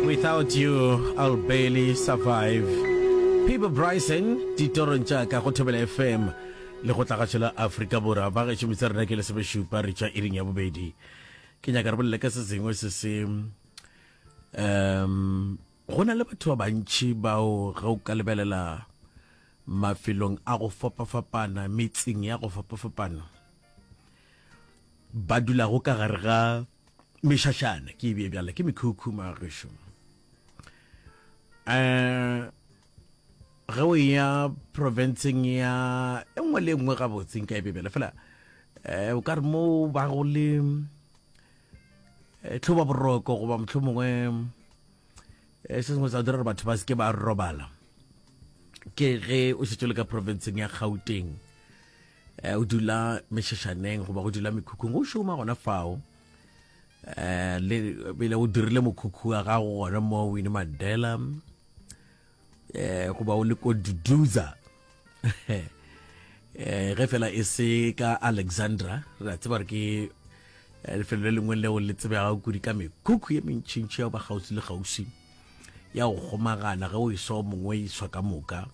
Without you I'll barely survive Peabo Bryson ditorong tša ka go Thobela FM le go tlagatšo la Afrika Borwa ba gešo metsi rena ke lesomešupa re tšwa iring ya bobedi ke nyaka re bolele ka se sengwe se se um go na le batho ba bantši bao ge o ka lebelela mafelong a go fapafapana metseng ya go fapafapana ba dulago ka gare ga Mešašana ke e bje bjale ke mekhukhuma gešo. Eh ge o ya provinceng ya e nngwe le e nngwe gabotseng ka e bje bjale fela eh o ka re mo ba go le eh, tlhoba boroko goba motlho mongwe eh, se sengwe sa dira gore batho ba seke ba robala ke ge o šetšo le ka provinceng ya gauteng eh, o dula mešešaneng goba go dula mekhukhung o šoma gona fao um le bile o dirile mokhukhu wa gago gona mo wine mandela um goba o le ko duduza um ge fela e se ka alexandra re a tseba re ke lefelo le lengwe leo le tsebega kudi ka mekhukhu ye mentšhintšhi ya ba kgauswi le kgauswi ya go kgomagana ge o e swa mongwe e iswa ka moka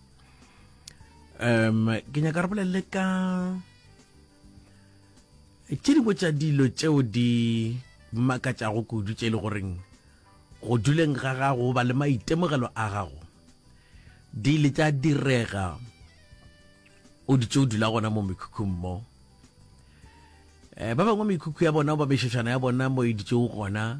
um ke nyaka re bolelele ka tše dingwe tša dilo tšeo di makatšago kudu tše e le goreng go duleng ga gago ba le maitemogelo a gago di ile tša direga o ditše o dula gona mo mekhukhung mo um ba bangwe mekhukhu ya bona ba mešošana ya bona mo e ditšego gona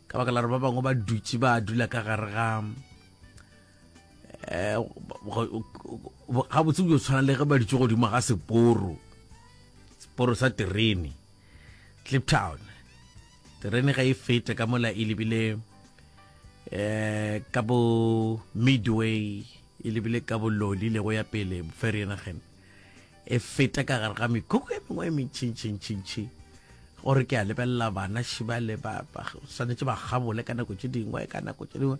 ka baka la re ba bangwe ba dutše ba dula ka gare ga eh, gabotse o tshwana le ge ba dutše godimo ga seporo seporo sa terene cliptown terene ga e fete ka mola e lebile eh ka bo midway e lebile ka bololi le go ya pele ferry nagen e feta ka gare ga mekhukhu e mengwe e mentšintšintšintši gore ke a lebelela bana šibale ba swanetše ba gabole ka nako tše dingwe ka nako tše dingwe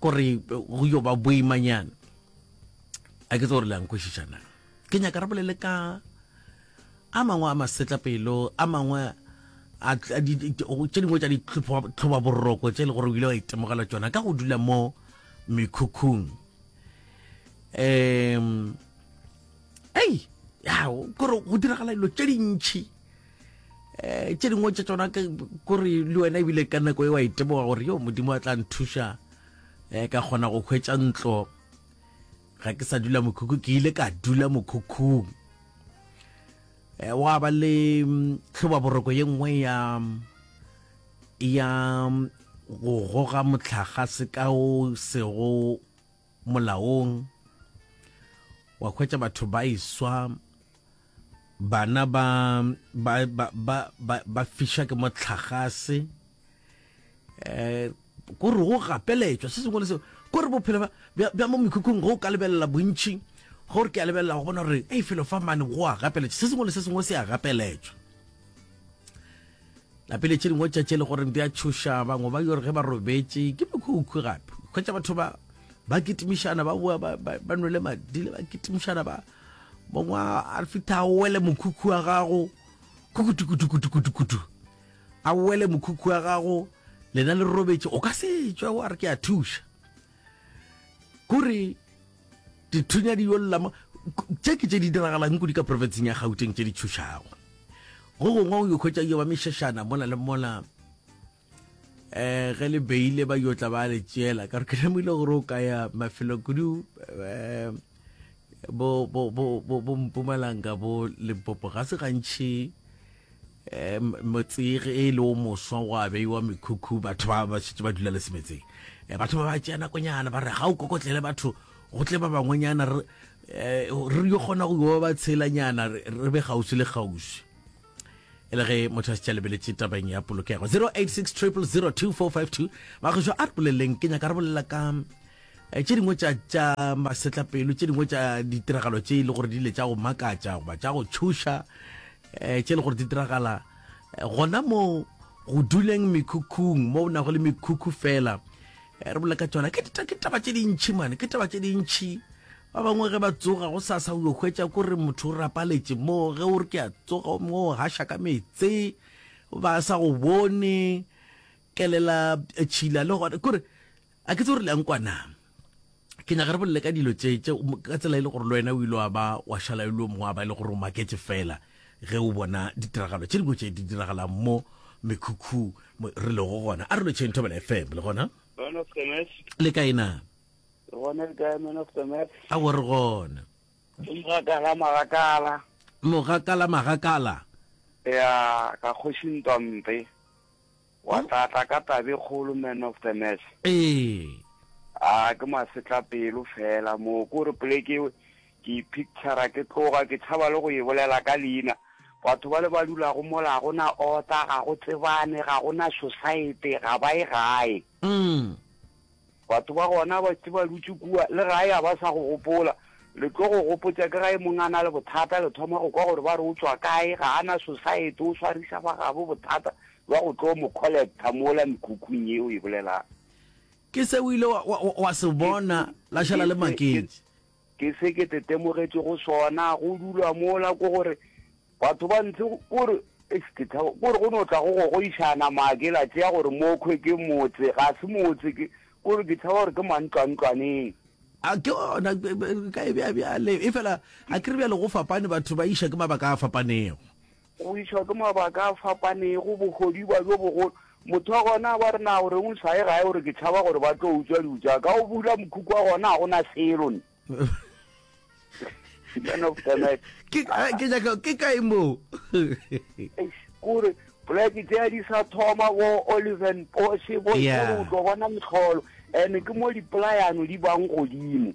gore go yo ba boimanyana a ke tse gore le yankwešišana ke nyaka re bolele ka a mangwe a masetlapelo a mangwe tše dingwe tša ditlhoba boroko tše e le gore o ile wa itemogela tsona ka go dula mo mekhukhung um ei ya kore go diragala dilo tše dintšhi um tše dingwe tše tsona kore le wena ebile ka nako e wa iteboga gore yo modimo a tla nthuša um ka kgona go hwetša ntlo ga ke sa dula mokhukhu ke ile ka dula mokhukhung um wa ba le tlhoba mm, boroko ye nngwe ya ya go goga motlhaga se ka o sego molaong, wa hwetša batho ba iswa, bana ba, ba, ba, ba, ba, ba fiša ke mohlagase, um ko re go gapeletšwa se sengwe le seo, ko re bophelo ba, bja, bja mo mekhukhung go ka lebelela bontši, gore ke a lebelela go bona gore ei felo fa mane go a gapeletšwa, se sengwe le se sengwe se a gapeletšwa. Napile tše dingwe tša tše le goreng di a tšhoša bangwe ba yore ge ba robetše ke mekhukhu gape kgwetša batho ba ba kitimišana ba boa ba, ba, ba nwele madile ba kitimišana ba mongwe a fitha a wele mokhukhu wa gago kukutukutukutukutukutu a wele mokhukhu wa gago lena le robetše o ka se tšwa wa re ke a thuša kore dithunya di yo llama tše ke tše di diragalang kudi ka profetseng ya gauteng tše di tšhošago go gongwe o yo khwetša yo ba mešešana mola le mola um ge le beile ba yo tla ba le tšeela ka re ke lemogile gore o ka ya mafelo kudu um bo mpumalanga bo limpopo ga se gantšhi Motse ge e le o moswa gwa beiwa mekhukhu, batho ba ba šetše ba dula le semetseng. Batho ba ba tšea nakonyana ba re ga o kokotlele batho go tle ba bangwenyana re re yo kgona go yo ba tshelanyana re be kgauswi le kgauswi e le ge motho a se tša lebeletše tabeng ya polokego 086 000 2452 bagešo a re boleleng ke nyaka re bolela ka eh, tše dingwe tša tša masetlapelo tše dingwe tša ditiragalo tše e le gore di ile tša go makatša goba tša go tšhoša um tše le gore di diragala eh, gona mo go duleng mekhukhung mo o nago le mekhukhu fela eh, re bolela ka tsona ke taba tše dintšhi mane ke taba tše dintšhi ba bangwe ge ba tsoga go sa sa ulo hwetša ko re motho o rapaletše mo ge o re ke a tsoga mo o hasha ka metse ba sa go bone kelela tšhila le gone kore a ke tse gore le yang kwa na ke nyaka re bolele ka dilo tše tše ka tsela e le gore le wena o ile wa ba wa šala e le o mongwe wa ba e le gore o maketse fela ge o bona ditiragalo tše dingwe tše di diragalang mo mekhukhu re lego gona a re lo tšheng thobela fm le gona le ka ena re gona le ka man of the match a gore gona mogakala magakala mogakala magakala ya ka kgoši ntwampe Wa tla tla ka tabe kgolo man of the match. Ee. Haa ke masetla pelo fela moo ko re poleke ewe ke e picture ke tloga ke tshaba le go e bolela ka leina batho ba le ba dula go mola go na ota ga go tsebane ga go na society ga ba e gae. Umm. Batho ba gona ba tse ba dutše kua le gae ga ba sa go gopola. Le tlo go gopotša ke ga e mong a na le bothata le thoma go kwa gore ba re o tšwa kae, ga a na society, o swariša ba gabo bothata bja go tlo mo collecta mola mekhukhung ye o e bolelago. Ke se o ile wa se bona la šala le maketše. Ke se ke tetemogetšego sona go dulwa mola ke gore batho ba ntse ko re, eish ke tshaba ko re go no tla go gogoišana maa ke la tšea gore mokhwe ke motse, ga se motse ke ko re ke tshaba gore ke mantlwantlwaneng. A ke gona ka e bea bjale efela a ke re bjale go fapane batho ba iša ke mabaka a fapanego. Go išwa ke mabaka a fapanego, bohodiba bjo bogolo, motho gona ba re, Na o reng o sa ye gae? O re, Ke tšhaba gore ba tlo utswa dijo tša ka. O bula mokhukhu wa gona, ga go na selo. Man of the match. Ke ka- ke nyaka- ke kae moo? Eish, ke gore poleke tše di sa thoma bo oliven poshe bo Yeah. yeah. o tlo bona metlholo and ke mo dipolayano di bang godimo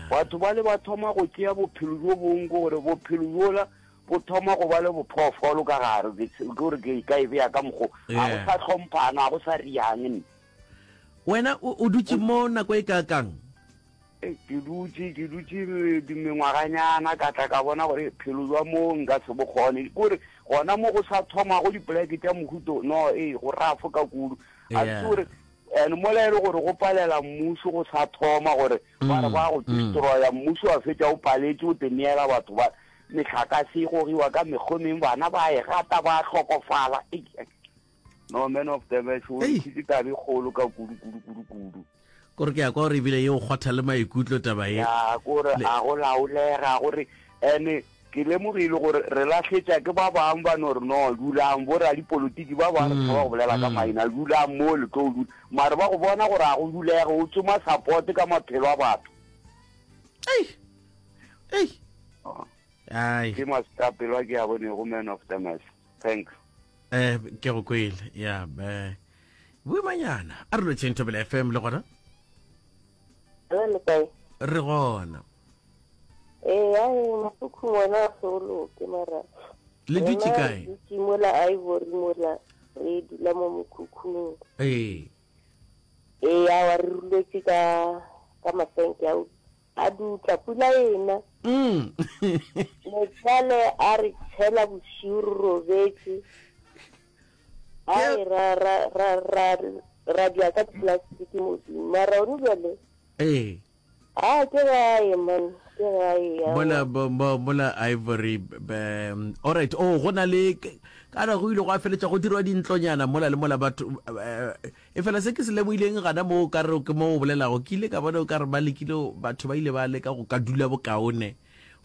Batho bale ba thoma go tšea bophelo bjo bong, ke gore bophelo bjola bo thoma go ba le bophoofolo ka gare, ke gore ke ka e beya ka mokgo, ga go sa hlomphana, ga go sa riang nne. Wena o dutše mo nako e ka kang? Ke dutše, ke dutše mengwaganyana, ka tla ka bona gore phelo bja mo nka se bo kgone, ke gore gona mo go sa thomago dipoleke tša mohuto no, ee go rafo ka kudu, a se gore And mola e le gore go palela mmušo go sa thoma gore ba re ba go destroya mmušo wa fetša o paletše o teneela batho ba metlhakase e gogiwa ka mekgomeng bana ba e gata ba hlokofala no man of damage o ntshitse tabe kgolo ka kudu kudu kudu kudu kore ke ya kwa gore ebile ye o kgwatha le maikutlo taba e ya kore a go laolega gore ene Ke lemogile gore re lahletša ke ba bang ba no re, No, dulang, boradipolotiki ba ba re tshaba go bolela ka maina, dulang moo le tlo dula. Mare ba go bona gore ga go dulege, o tsoma support ka maphelo a batho. Ei! Ei! Oh. Ai. Ke masitapelo a ke a bonego man of the mess. Thanks. Eh, ke go kwele. Yeah, eh. Boimanyana, a re lo tšeng Thobela FM le gona. Hello, le kae? Re gona. Eh, ya e mokhukhung wena o se o loke mara. Le dutše kae? Re dutše mola Ivory mola re dula mo mokhukhung. Eh. Eh, ya wa re ruletse ka ka masenke a a dutla pula ena. Mm. Motswale a re tshela bosiu robetse. Ai, ra, ra, ra, ra, ra dya ka diplastic modimo. Mara one bjale, Ee. a ke gae man, ke gae ya. Mola, bo- bo- mola Ivory, be, all right, oh, go na le, k- ka re go ile go a feletša go dirwa dintlonyana mola le mola batho, eh, e fela se ke se lemohileng gana moo o ka re ke moo o bolelago, ke ile ka bona o ka re ba lekile, go- batho ba ile ba leka go ka dula bokaone,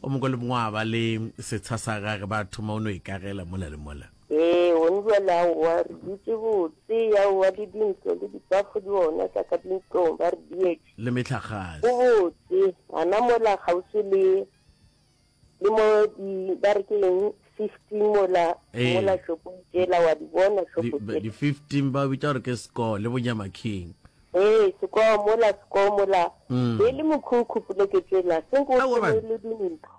go mongwe le mongwe a ba le setsha sa gage, ba thoma o no ikagela mola le mola. Ee, gone bjale aowa, re dutše botse, aowa, le dintlo le dipafo di gona tša ka dintlong, ba re dietše. Le mehlagase. Go botse, gana mola kgauswi le, le mo di, ba re ke eng, fifteen mola, Ee. mola šopong tšela, wa di bona Di, šopo ba- tše. di fifteen ba o bitša gore ke Score le Bonyamaking. Ee, Score mola, Score mola, Mm. be e le mokhukhu poleke tšela, se nko Aowa, ba- le dintlo.